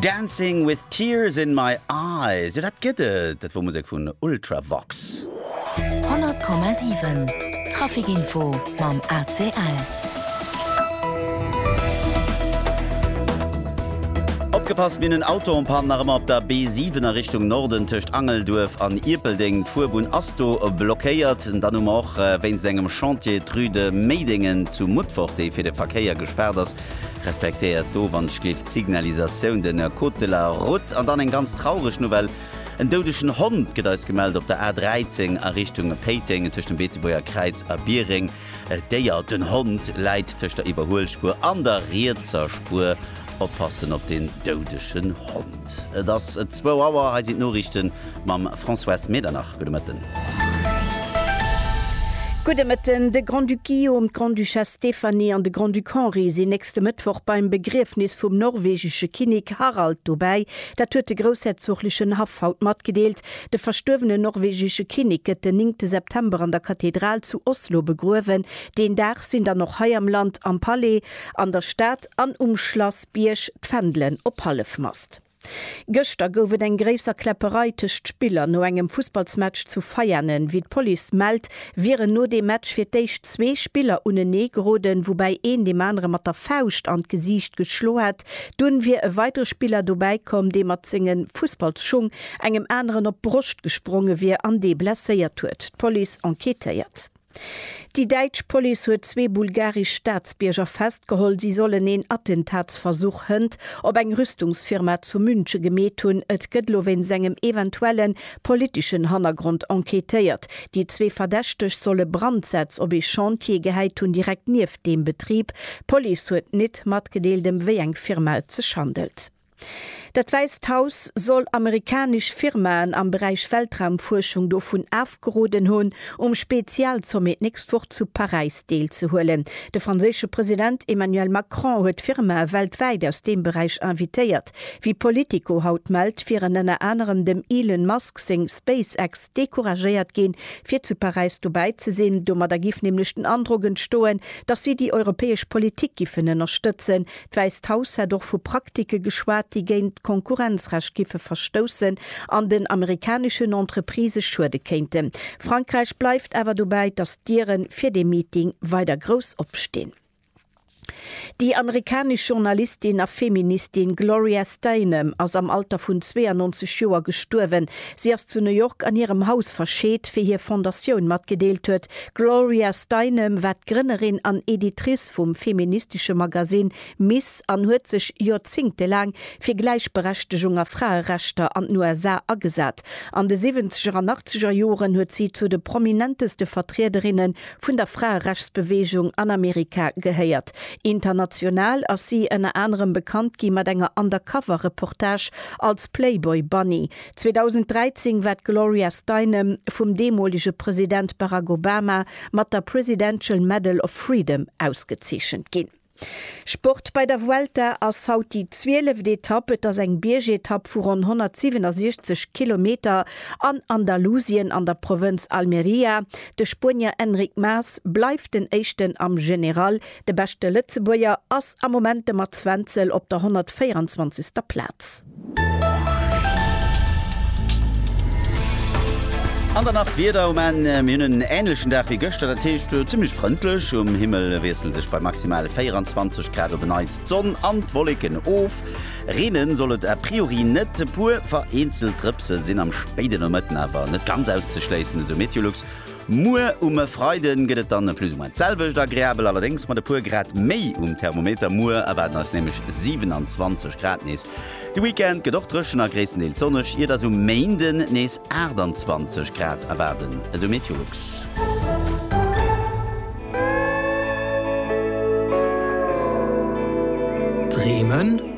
Dancing with tears in my eyes, jo dat gëtt et, dat wor Musek vun Ultravox. 100,7 Trafic Info mam ACL. Opgepasst, mir hunn en Auto en Panne nach ëmmer op der B7 a Richtung Norden tëscht Angelduerf an Ierpeldeng. D'Fuerbunn ass do blockéiert. Dann hu mer och wéinst engem Chantier d'Rue de Méidéngen zu Mutfort, déi fir de Verkéier gespaart ass. Respektéiert d'Owandschlift, d'Signalisatioun, de Code de la Route an dann eng ganz traureg Nouvelle, En doudegen Hond gëtt eis gemellt op der A13 a Richtung Péiteng tëscht dem Beetebuerger Kräiz a Biereng. D'Déier, den Hond, läit tëscht der Iwwerhuelspuer an der rietser Spuer. Oppassen op den doudegen Hond. Zäit. Et ass zwou Auer. Hei sinn d'Noriichten mam Françoise Medernach. Gudde Mëtten. Gudde Mëtten. De Grand-Duc Guillaume, d'Grande-Duchesse Stéphanie an de Grand-Duc Henri sinn nächste Mëttwoch beim Begriefnis vum norwegesche Kinnek Harald dobäi. Dat huet de groussherzoglechen Haff haut matgedeelt. De verstuerwenen norwegesche Kinnek gëtt den néngte September an der Kathedral zu Oslo begruewen. Deen Dag sinn dann och hei am Land am Palais An der Stad an um Schlassbierg d'Fändelen op Hallefmast. Gëschter gouf et eng gréisser Kläpperei tëscht Spiller no engem Fussballsmatch zu Veianen. Wéi d'Police mellt, wieren no deem Match fir d'éischt zwee Spiller unenee geroden, woubäi een deem anere mat der Fauscht an d'Gesiicht geschlo hätt. Dunn wier e weidere Spiller dobäi komm, dee mat senge Fussballsschung engem aneren op d'Broscht gespronge wier an dee blesséiert huet. D'Police enquêtéiert. Déi däitsch Police huet zwee bulgaresch Staatsbierger festgeholl. Si sollen een Attentatsversuch hënt op eng Rüstungsfirma zu Münche gemeet hunn. Et gëtt elo wéinst engem eventuelle politeschen Hannergrond enquêtéiert. Déi zwee Verdächteg solle Brandsätz op ee Chantier gehäit hunn, direkt nieft deem Betrib. D'Police huet nit matgedeelt, ëm wéi eng Firma et sech handelt. Dat Wäisst Haus soll amerikanesch Firmaen am Beräich Weltraumfuerschung dovun afgeroden hunn, um Spezialsommet d'nächst Woch zu Paräis deelzehuelen. De franséische President Emmanuel Macron huet Firmae weltwäit aus deem Beräich invitéiert. Wéi Politico haut mellt, wieren ënner anerem dem Elon Musk seng SpaceX decouragéiert ginn, fir zu Paräis dobäi ze sinn. Domadder géif nämlech den Androck entstoen, datt si déi europäesch Politik giffen ënnerstëtzen, D'Wäisst Haus hätt och vu Praktike geschwat, déi géint d'Konkurrenzrecht giffe verstoussen an den amerikaneschen Entreprisë schuede kéinten. Frankräich bleift awer dobäi, datt d'Diere fir dee Meeting weider grouss opstinn. Déi amerikanesch Journalistin a Feministin Gloria Steinem ass am Alter vun 92 Joer gestuerwen. Si ass zu New York an hirem Haus verscheet, wéi hir Fondatioun matgedeelt huet, D'Gloria Steinem war d'Grënnerin an Editrice vum feministesche Magasinn Miss an huet sech joerzéngtelaang fir Gläichberechtegung a Fraerechter an den USA agesat. An de Siwwenzeger an Achtzeger Joren huet si zu de prominenteste Vertriederinne vun der Fraerechtsbeweegung an Amerika gehéiert. International ass si ënner anerem bekannt gi mat enger Undercover-Reportage als Playboy Bunny, 2013 war d'Gloria Steinem vum deemolege President Barack Obama mat der Presidential Medal of Freedom ausgezeechent ginn. Sport bei der Vuelta ass haut déi zwieleft Etapp. Et ass eng Biergetapp vu ronn 167 Kilometer an Andalusien an der Provënz Almería. De Spuenier Enric Mas bleift den Éischten am General, De beschte Lëtzebuerger ass am Moment de Mats Wenzel op der 124. Plaz. An dann nach d'Wieder um Enn, Mir hunn en änlechen Dag wéi gëschter, dat heescht zimmlech frëndlech. Um Himmel wiessle sech bei maximal 24 Grad op e Neits d'Sonn an d'Wolleken of. Reenen soll et a priori net, e puer vereenzelt Drëpse sinn am spéide Nomëtten awer net ganz auszeschléissen, esou Meteolux. Muer um Freiden gëtt et dann plus ou moins d'selwecht, agreabel allerdéngs mat e puer Grad méi um Thermometer. Muer erwaarden eis nämlech 27 Grad nees. De Weekend gëtt och dréchen a gréisstendeels sonneg, iert eis um Méinden nees 28 Grad erwaarden, esou Meteolux. Dreemen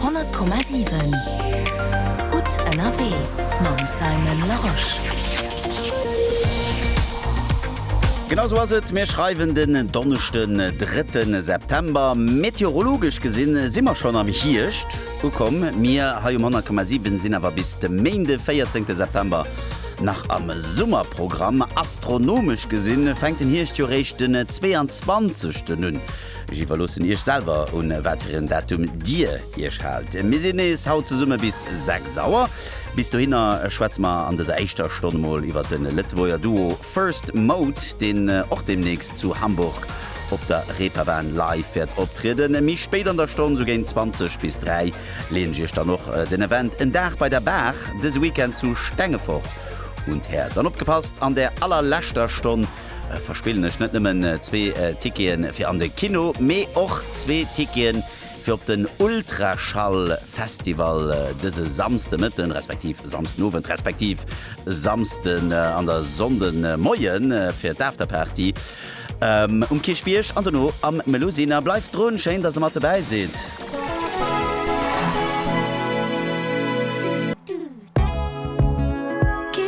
100,7 Gutt ënnerwee mam Simon Larosche. Genau esou ass et, mir schreiwen den Donneschden, drëtten September. Meteorologesch gesinn si mer schonn am Hierscht ukomm. Mir hei um 100,7 sinn awer bis de Méinde, véierzéngte September nach am Summerprogramm. Astronomesch gesinn fänkt den Hierscht jo réischt den 22 ten un. Ech iwwerloossen Iech selwer, un wat fir en Datum Dir Iech haalt. Mir sinn nees haut zesumme bis 6 Auer. Bis dohinner schwätze mer an dëser éischter Stonn mol iwwert de Lëtzebuerger Duo First Mode, deen och deemnächst zu Hamburg op der Reeperbahn live wäert optrieden. Méi spéit an der Stonn, sou géint 20 bis 3, leeën ech Iech dann och den Event En Dag bei der Baach dëse Weekend zu Stengefort un d'Häerz. An opgepasst, an där allerleschter Stonn, verspillen ech net nëmmen zwee Tickete fir an de Kino, mee och zwee Tickete fir op den Ultraschall-Festival dëse Samsdemëtten, respektiv Samsdenowend, respektiv Samsden an der Sonndemoie fir d'Afterparty um Kierchbierg an dono am Melusina. Bleift drun! Schéin, dass Der mat dobäi sidd!